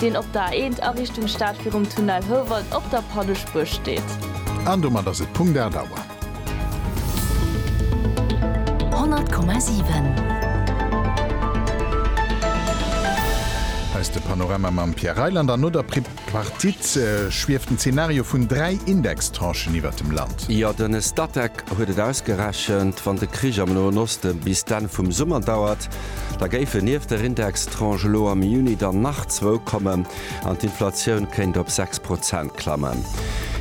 deen op der A1 a Richtung Stad virum Tunnel Houwald op der Pannespuer steet. An domat ass et Punkt 8 Auer. 100,7. Hei ass de Panorama mam Pierre Reyland an no der Pripartite schwieft den Zenario vun dräi Indextranchen iwwert dem Land. Jo, den Statec huet et ausgerechent, wann de Krich am Noen Osten bis d'Enn vum Summer dauert, Da géifen nieft der Indextranche elo am Juni dann nach zwou kommen an d'Inflatioun kéint op 6 Prozent klammen.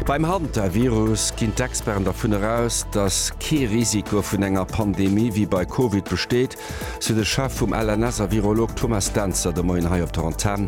Beim Hantavirus ginn d'Experten dervun eraus, datt kee Risiko vun enger Pandemie wéi bei Covid besteet, sou de Chef vum LNS a Virolog Thomas Dentzer de Moien hei op der Antenn.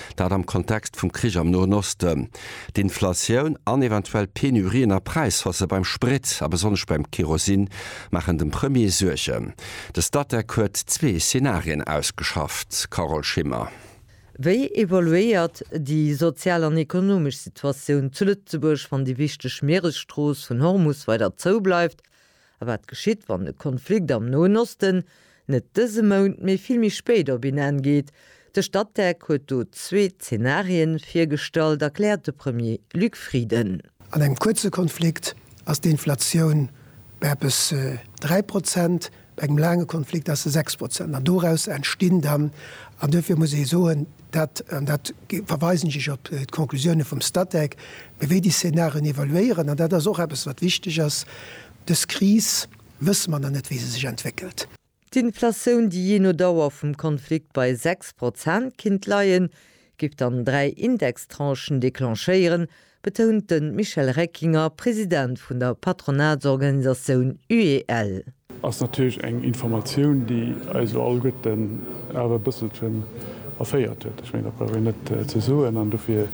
Dat am Kontext vum Krich am Noen Osten, d'Inflatioun an eventuell Penurien a Präishausse beim Sprit a besonnesch beim Kerosin maachen dem Premier Suergen. De Statec huet zwee Zenarien ausgeschafft, Carole Schimmer. Wéi evoluéiert déi sozial an ekonomesch Situatioun zu Lëtzebuerg, wann déi wichteg Mieresstrooss vun Hormus weider zoubleift A wat geschitt, wann de Konflikt am Noen Osten net dëse Mount, mee vill méi spéit op een Enn geet? De Statec huet do zwee Zenarien virgestallt, erkläert de Premier Luc Frieden. An engem kuerze Konflikt ass d'Inflatioun bei eppes 3 Prozent, bei engem laange Konflikt ass se 6 Prozent. An doraus entstinn dann, an dofir muss ee soen, Dat, an dat verweisen ech op d'Conclusioune vum Statec, mir wéi déi Szenarien evaluéieren, an dat ass och eppes wat wichteg ass, dës Kris wësse mer nach net wéi se sech entwéckelt. D'Inflatioun, déi jee no Dauer vum Konflikt bei 6 Prozent kinnt leien, géif dann dräi Indextranchen declenchéieren, betount de Michel Reckinger, President vun der Patronatsorganisatioun UEL. Ass natierlech eng Informatioun, déi eis elo alleguerten awer e bësselchen erféiert huet. Ech mengen, dat brauch een net ze soen. An dofir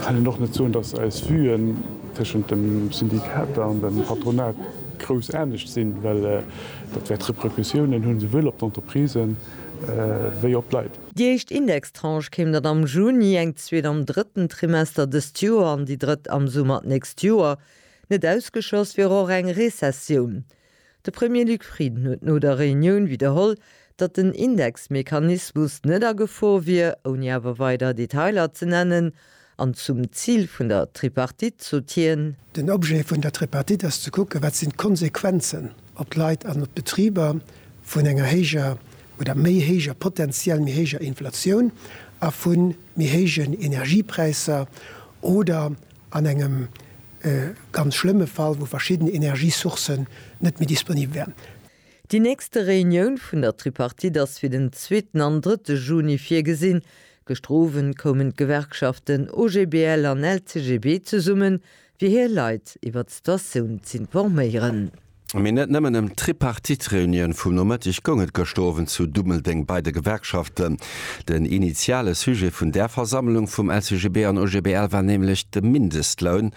kann een och net soen, dass eis Vuen tëschent de Syndikater an dem Patronat grouss anescht sinn, well dat wäert Repercussiounen hunn, souwuel op d'Entreprisen wéi op d'Leit. Déi éischt Indextranche kéim dann am Juni, eng zweet am drëtten Trimester dëst Joer an déi drëtt am Summer d'nächst Joer. Net ausgeschloss wier och eng Rezessioun. De Premier Luc Frieden huet no der Reunioun widderholl, datt den Indexmechanismus net a Gefor wier, ouni awer weider Detailer ze nennen. An zum Zil vun der Tripartite sot hien. Den Objet vun der Tripartite ass ze kucken, wat sinn d'Konsequenzen op d'Leit an op d'Betriber vun enger héijer oder méi héijer, potentiell méi héijer Inflatioun a vu méi héijen Energiepräisser oder an engem ganz schlëmme Fall, wou verschidden Energiesourcen net méi disponibel wären. Déi nächste Reunioun vun der Tripartite ass fir den zweeten an drëtte Juni virgesinn. Gëschter Owend koumen d'Gewerkschaften OGBL an LCGB zesummen, fir hir Leit iwwert d'Situatioun z'informéieren. Mee net nëmmen ëm d'Tripartite-Reunioun vum Nomëtteg goung et gëschter Owend zu Dummeldeng bei de Gewerkschaften. Den initiale Sujet vun där Versammlung vum LCGB an OGBL war nämlech de Mindestloun.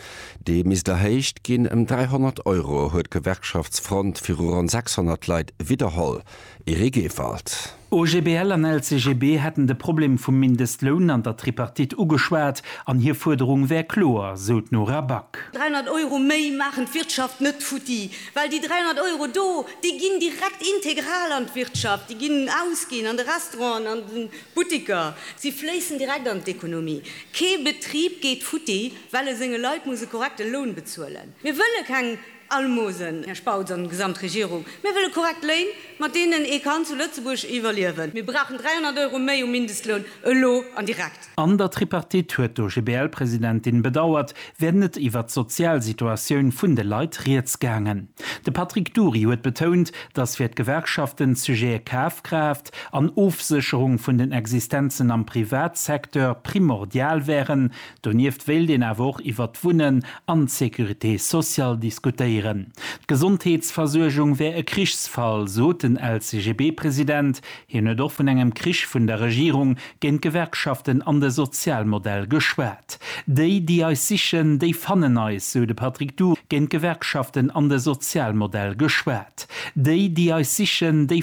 Dee misst erhéicht ginn ëm 300 Euro, huet d'Gewerkschaftsfront viru ronn 600 Leit widderholl. Eric Ewald. OGBL an LCGB hätten de Problem vum Mindestloun an der Tripartite ugeschwat an hir Fuerderung wär kloer, sou d'Nora Back. 300 Euro méi maachen d'Wirtschaft net futti, well déi 300 Euro do, déi ginn direkt integral an d'Wirtschaft, déi ginn ausginn an de Restauranten, an de Butteker, si fléissen direkt an d'Ekonomie, kee Betrib geet futti. Well e senge Leit muss e korrekte Loun bezuelen. Mir wëlle keng Almosen, Här Spautz an gesamt Regierung. Mir wëlle korrekt Léin, mat deenen ee kann zu Lëtzebuerg iwwerliewen. Mir brauchen 300 Euro méi um Mindestloun, elo an direkt. An der Tripartite, huet d'OGBL-Presidentin bedauert, wär net iwwert d'sozial Situatioun vun de Leit rieds gaangen. De Patrick Dury huet betount, datt fir d'Gewerkschaften d'Sujete Kafkraaft an Ofsécherung vun den Existenzen am Privatsecteur primordial wären, Donieft wéilt een awer och iwwert d'Wunnen an d'Sécurité sociale diskutéieren. D'Gesondheetsversuergung wär e Krichsfall, sot den LCGB-President. Hien huet och vun engem Krich vun der Regierung géint d'Gewerkschaften an de Sozialmodell geschwat. Déi, déi eis sichen, déi fannen eis, sou de Patrick Du. Géint d'Gewerkschaften an de Sozialmodell geschwat. Déi, déi eis sichen, déi.